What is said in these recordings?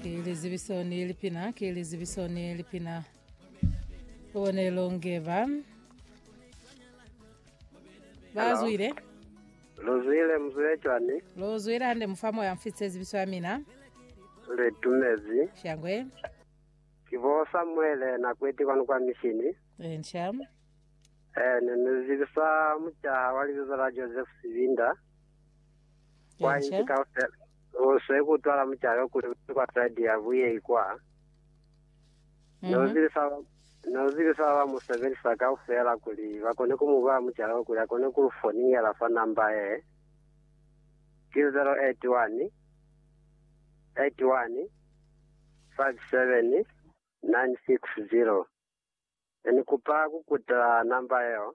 Ki lizibiso ni lipina, ki lizibiso ni lipina. Bonelo ngeba. Bazwile. luzwile mzwile cwani Lo zwile hande mufamo ya mfitse zibiso ya mina. litumezi Shangwe. ki bo samuele na kweti kwanu kwa mishini Ensha. eh ne ni zibisa mucaha wa libizo la joseph sivinda kwa Ensha. inchi kaufela Ku swe ku twala mucalo kuli u ye kwa side ya buyei kwa. Ne u zibisa, ne u zibisa ba ba mu sebelisa kaufela kuli ba kone ku mu bala mucalo kuli a kone ku lu foningela fa namba ye, ki 081 81 57 960. Ne ni kupa ku kutela namba yeo.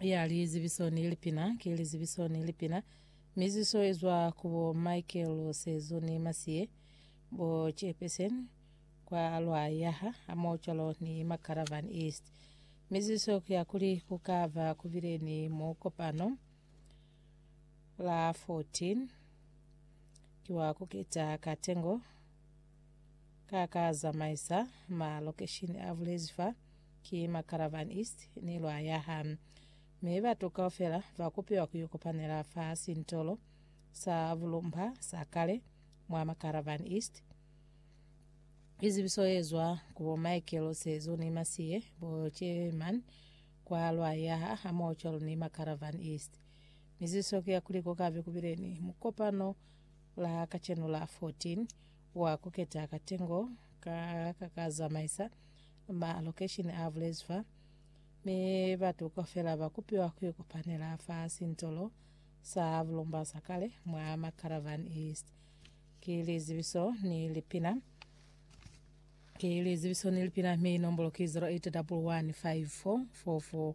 ya lizibiso ni lipina ki lizibiso ni lipina miziso ezwa kubo Michael Sezo ni Masiye bo Chairperson kwa lwa yaha amocwalo ni Macaravan East miziso kuya kuli kukava kubile ni mukopano la 14 kiwa kuketa katengo Ka ka zamaisa ma lokeshini a bulezi fa ki Macaravan East ni lwa yaha. Mi batu kaufela ba kupiwa ku ikopanela fa sintolo sa bulumba sa kale mwa Macaravan East. Izibiso yezwa ku bo Michael Sezo ni Masie bo Chairman kwa lwa yaha hamoho cwalo ni Macaravan East. Mizibiso ki ya kuli kukabe kubile ni mukopano la kacenu la 14 wa kuketa katengo ka kakazamaisa ma location a bulezi fa, mi batu kaufela ba kupiwa kuikopanela fa sintolo sa bulomba sa kale mwa Macaravan East. Ki lizibiso ni lipina ki lizibiso ni lipina mi nombolo ki 0811544444.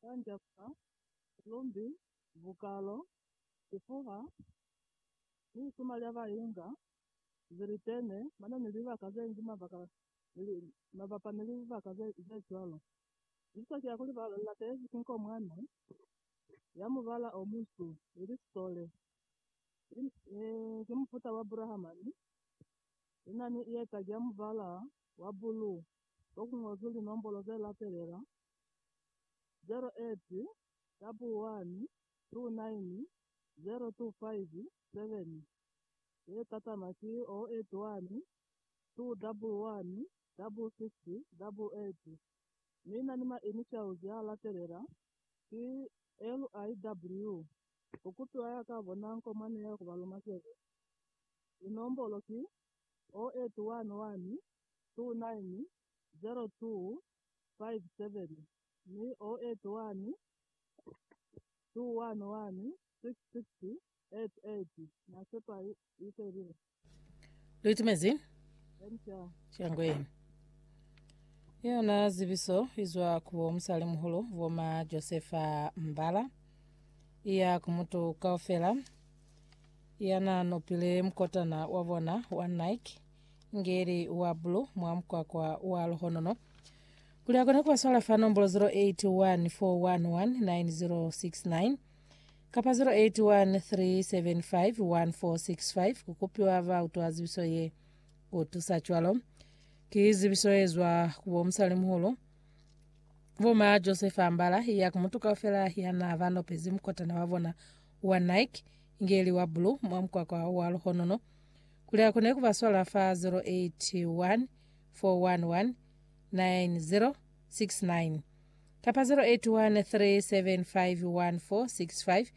Kanja fa silumbi, bukalo, sifuha, ni lisuma lya ba inga, zilitene, mano ni libaka ze ngi mabaka ni mabapa ni libaka ze cwalo. Icisa ki ya kuli ba latezi ki nko mwa ne ya mubala o munsu, ili sole, ki, ki mufuta wa Brahamani, ina ni ieta ki ya mubala wa buluu, ko ku ngozwi linombolo ze latelela, 08-129-025-7 e tatama ki 0812116688 mi na ni ma initials ya latelela ki LIW. Ku kupiwa ya ka bona nko mwa neya ku ba luma sebe. Linombolo ki 0811290222. 57 ni 081 211 660 88 Na sepa i, i felile. Lu itumezi? Emca. Shangweni. Yona zibiso izwa ku bo musali muhulu boma Josefa Mbala iya ku mutu kaufela yana nopile mukotana wa bona wa Nike Ngeli wa bulu mwa mukwakwa wa luhonono. Kuli akone kubasola fa nombolo 0814119069 kapa 0813751465 kukupiwa ba utwa zibiso ye kutusa cwalo. Ki zibiso ezwa kubo musalimuhulu boma Joseph Ambala ya kumutu kaufela yana banopezi mukotana wa bona wa Nike ngeli wa bulu mwa mukwakwa wa luhonono Kuli a kone ku ba swala fa 081 411 9069 kapa 081 375 1465,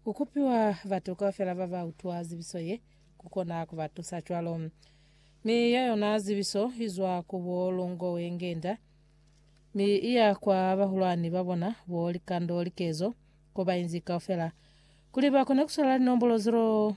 ku kupiwa batu kaufela ba ba utwa zibiso ye ku kona ku ba tusa cwalo. Mi ya yona zibiso i zwa ku bo Lungowengenda, mi i ya kwa bahulwani ba bona bo Likando Likezo, ko ba inzi kaufela, kuli ba kone ku swala linombolo 0.